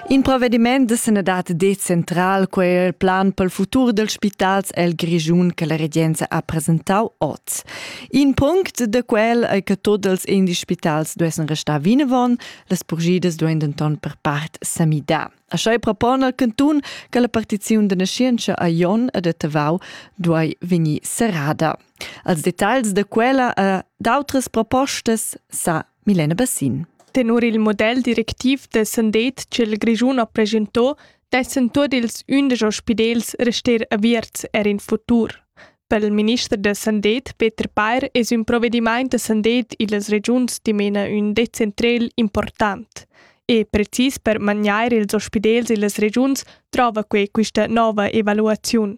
In provvediment de sanadad decentral quei er plan pel futur dels spitals el Grischun che la regenza ha presentau oz. In punct de quel ei che tots els indi spitals duessen restar vinavon, las purgidas duein denton per part semidar. Așa propon al cantun che la partiziun de nascienza a Jon e de Tavau duei vegnir serrada. Als details de quella e d'autras propostas sa Milena Bassin. Tenor il model directiv de Sandet ch'il Grischun ha presentò, dessen tuot ils undisch ospidels rester aviarts er in futur. Per il minister da Sandet, Peter Peyer, es un provvediment da Sandet illas regiuns dimena un decentrel important. E precis per maniar ils ospidels illas regiuns trova quei quista nova evaluaziun.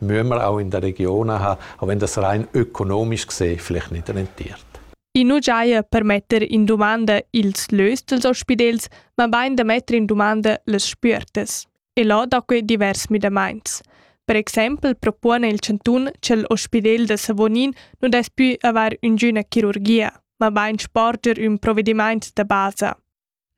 Mümer auch in der Region ha, auch wenn das rein ökonomisch gesehen vielleicht nicht rentiert. I nu giaja per metter in dumanda ils lös dels ospidels, ma bain da metter in dumanda las spüertas. E là da que divers midamaints. Per exempel propone il Cantun che l'ospidel da Savonin non dess più aver üngüna chirurgia, ma bain sporger ün provedimaint da basa.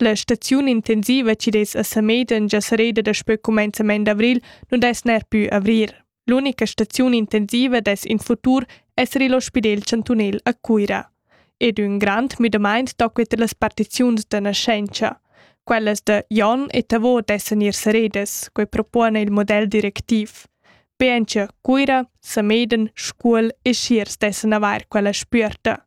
La staziun intensiva chi dess a Samedan già sareda daspö cumenzament d'avril nu dess ner pü avrir. L'unica staziun intensiva dess in futur esser il Ospidel chantunel a Cuira. Ed ün grand müdamaint tocquet las partiziuns da naschentscha. Quellas da Jon e Tavo dessan ir saredas, quai propone il model directiv. Be encha Cuira, Sameden, Scuol e Schiers dessan avair quella spüerta.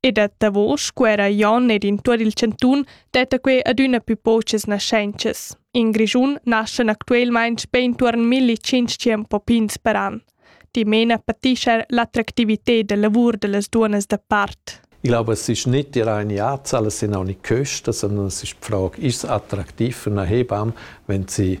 E da davos scuera Jon ed in tuot il chantun detta quei adüna più pochas naschentschas. In Grischun naschan actuelmaing be intuorn 1500 popins per an. Dimena patischer l'attractivited da lavur da las duonas da part. Ich glaube, es ist nicht die reine Art, alle sind auch nicht Köster, sondern es ist die Frage, ist es attraktiv für eine Hebamme, wenn sie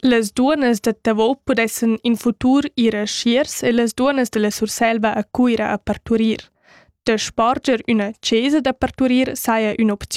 Las duonnas da Tavau pudessan in futur ir a Schiers e las duonnas da la Surselva a Cuira a parturir. Da sparger üna chesa da parturir saja ün'opziun.